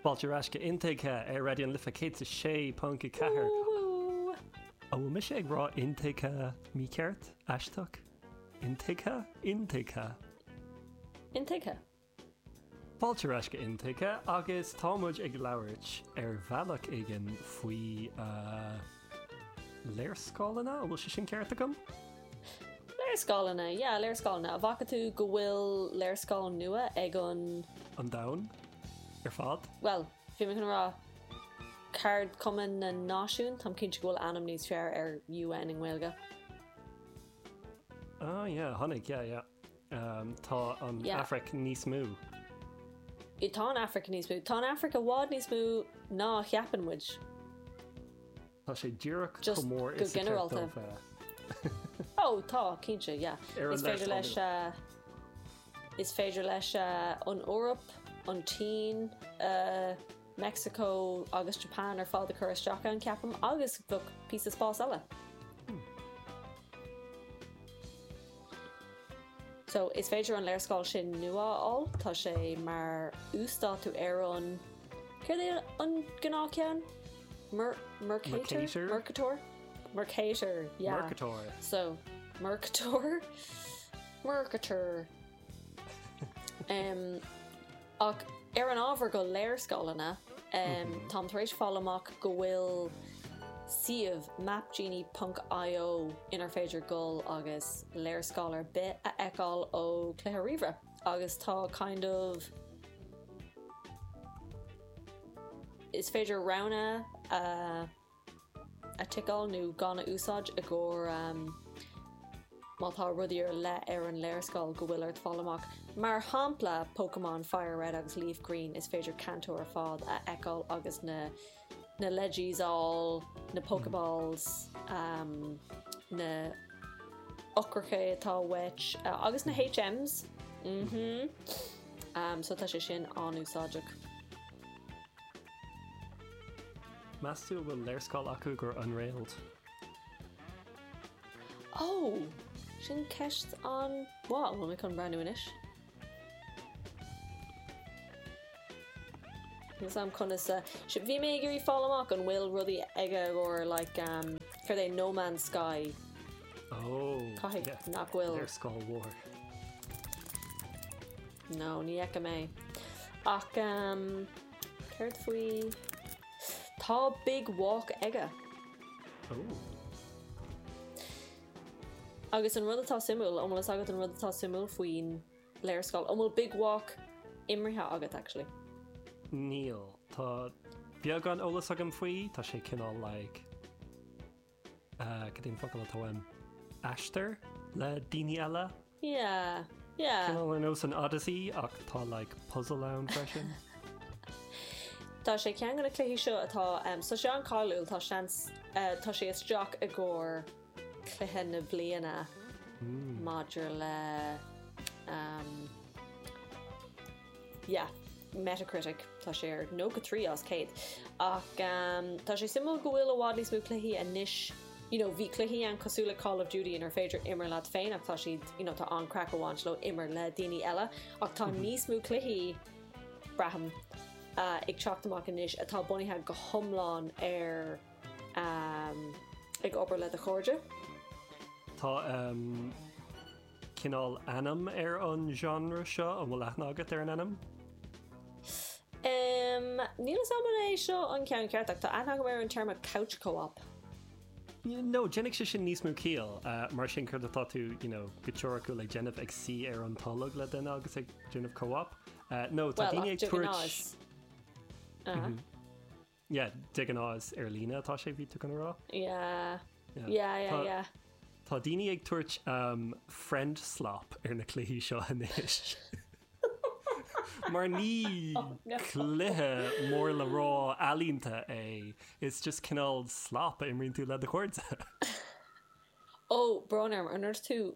Fáilte ar ais go Intuigthe ar Raidió an Life 106.4. An bhfuil mise ag rá intuigthe? Mícheart? Aisteach? Intuigthe? Intuigthe? Intuigthe. Fáilte ar ais go Intuigthe agus tá muid ag labhairt ar bhealach éigin faoi. Léarscáileanna, an bhfuil sé sin ceart agam? Léarscáileanna, yeah, léarscáileanna. An bhfaca tú go bhfuil léarscáil nua ag an. An Domhan ar fad? Bhuel, bhí mé chun a rá ceardchumann na Náisiún. Táim cinnte go bhfuil ainm níos fearr ar UN i nGaeilge. Ah, yeah, tháinig, yeah, yeah. Tá an Afraic níos mó. Tá an Afraic níos mó. Tá an Afraic i bhfad níos mó ná a cheapann muid. Tá sé díreach chomh mór is a ceart di a bheith. Ó, tá, cinnte, yeah. Ar an leith folamh. Is féidir leat an Eoraip, an tSín, Meicsiceo agus Japan ar fad a chur isteach ann, ceapaim, agus bheadh píosa spáis eile. So, is féidir an léarscáil sin nua a fháil, tá sé mar uasdátú ar an céir an gnáthcheann Mercator Mercator Mercator Mercator so Mercator Mercator um, Ach ar an ábhar go léarscáileanna, táim tar éis fáil amach go bhfuil suíomh, mapgenie ponc io, inar féidir dul agus léarscáil ar bith a fheiceáil ó cluiche ríomhaire agus tá kind of is féidir roghanna a. a ticeáil nó gan a úsáid i gcomhair Má tá rudaí ar leith ar an léarscáil go bhfuil ort fáil amach, mar shampla Pokémon Fire Red agus Leaf Green, is féidir Kanto ar fad a fheiceáil agus na na legends á na Pokeballs um, na heochracha atá uait uh, agus na HMs mm -hmm. um, so tá sé sin an-úsáideach. Meas tú an bhfuil léarscáil acu d'Unrailed? Ó! Sin ceist an-mhaith, tá mé chun breathnú anois. Níl Is amhlaidh a a, bhí mé ag iarraidh fáil amach an bhfuil rudaí aige i gcomhair like ehm céard é No Man's Sky. Ó! Caithfidh nach bhfuil. Léarscáil mhór. No, ní fheicim é. Ach ehm, céard faoi, tá Big Walk aige. Ooh. Agus an rud atá suimiúil, an bhfuil fhios agat an rud atá suimiúil faoin léarscáil? An bhfuil Big Walk imrithe agat actually? Níl. Tá beagán eolas agam faoi, tá sé cineál like. Cén focal atá ann? Aistear le daoine eile? Yeah, yeah. Cineál ar nós an Odyssey ach tá like puzzle ann freisin. Tá sé ceann de na cluichí seo atá so, tá sé an-cháiliúil, tá seans tá sé isteach i gcomhair cluiche na bliana maidir le yeah, Metacritic, tá sé ar 93 as 100. Ach tá sé suimiúil go bhfuil i bhfad níos mó cluichí anois, you know, bhí cluichí ann cosúil le Call of Duty inar féidir imir leat féin ach tá siad, you know, tá an craic a bhaint leo imir le daoine eile ach tá níos mó cluichí, braithim, ag teacht amach anois atá bunaithe go hiomlán ar ag obair le do chairde. Tá. cineál ainm ar an genre seo? An bhfuil aithne agat ar an ainm? Umm, níl 'fhios a'm an é seo an ceann ceart ach tá aithne agam ar an téarma 'couch co-op'. No, déanfadh sé sin níos mó ciall, mar sin céard atá tú, you know, go teoiriciúil ag déanamh, ag suí ar an tolg le duine agus ag déanamh co-op? No, tá daoine ag tabhairt, Well, ach de ghnáth is, ah? Yeah, de ghnáth is ar líne atá sé, bhí tú chun a rá? Yeah, yeah, yeah, yeah. Tá daoine ag tabhairt friend slop ar na cluichí seo anois. Mar ní cluiche mór le rá ealaíonta é, it's just cineál slop a imríonn tú le do chairde. Ó, brón orm, an raibh tú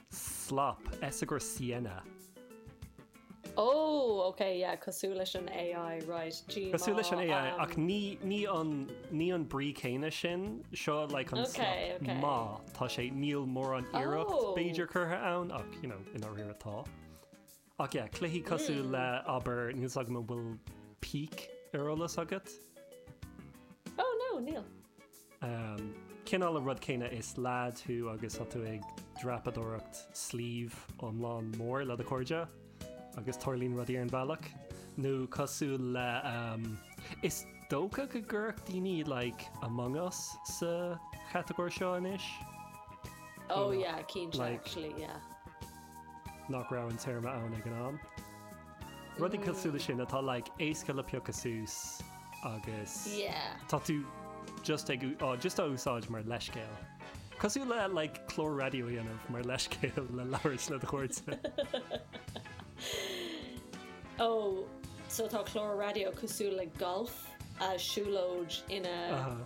Slop, S agus. Oh ok yeah cosúil leis an AI right gmo. Cosúil leis an AI ach ní ní an ní an brí céanna sin seo like an slop mar tá sé níl mórán iarracht b'fhéidir curtha ann ach you know i ndáiríre tá. Ach yeah, cluichí cosúil le abair, níl 's agam an bhfuil Peak ar eolas agat? Oh no, níl. Umm, cineál an rud céanna is leaid thú agus tá tú ag dreapadóireacht sliabh iomlán mór le do chairde agus tarlaíonn rudaí ar an bhealach. Nó cosúil le umm, is dócha go gcuirfeadh daoine like Among Us sa chatagóir seo anois. Oh yeah, cinnte actually, yeah. nach raibh an téarma ann ag an am. Rudaí cosúil leis sin atá like éasca le piocadh suas agus tá tú just just á úsáid mar leithscéal. Cosúil le like clár raidió a dhéanamh mar leithscéal le labhairt le do chairde. Ó so tá clár raidió cosúil le golf, siúlóid iad.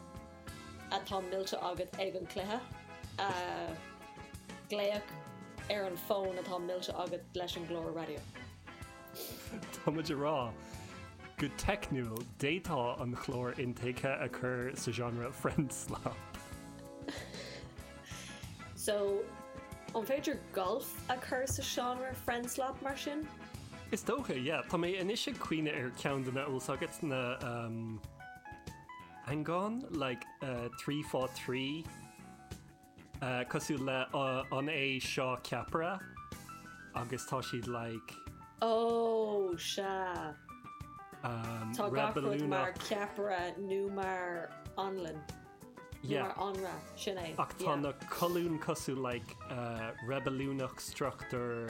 atá millte agat ag an gcluiche, glaoch ar an bhfón atá millte agat leis an gclár raidió. Tá muid ag rá go teicniúil, d'fhéadfá an clár in thaobh a chur sa genre friend slap. So, an féidir golf a chur sa genre friend slap mar sin? Is dócha, yeah. Tá mé anois ag cuimhneamh ar ceann de na. 'fhios agat na. An rud like trí fá trí cosúil le an é seo ceapaire agus tá siad like. Ó sea, tá gach rud mar ceapaire nó mar anlann nó mar anraith, sin é. Ach tá na colúin cosúil like reibiliúnach, struchtúr.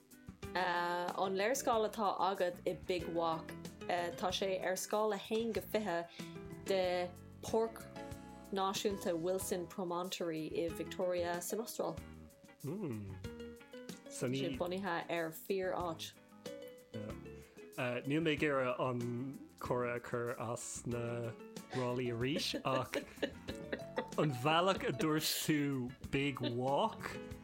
An léarscáil atá agat i Big Walk, tá sé ar scáil 1-20 de Páirc Náisiúnta Wilson Promontory i Victoria san Astráil. Tá sé bunaithe ar fíor-áit. Níl mé ag iarraidh an comhrá a chur ó na ráillí arís ach an bhealach a dúirt tú Big Walk,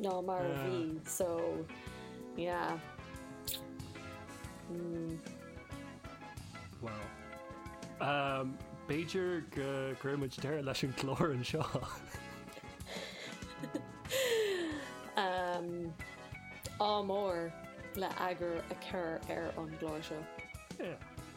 ná mar a bhí so yeah mm. Wow. Um, B'fhéidir go gcuirfidh muid deireadh leis an gclár anseo. um, ádh mór le eagar a chur ar an gclár seo. Yeah.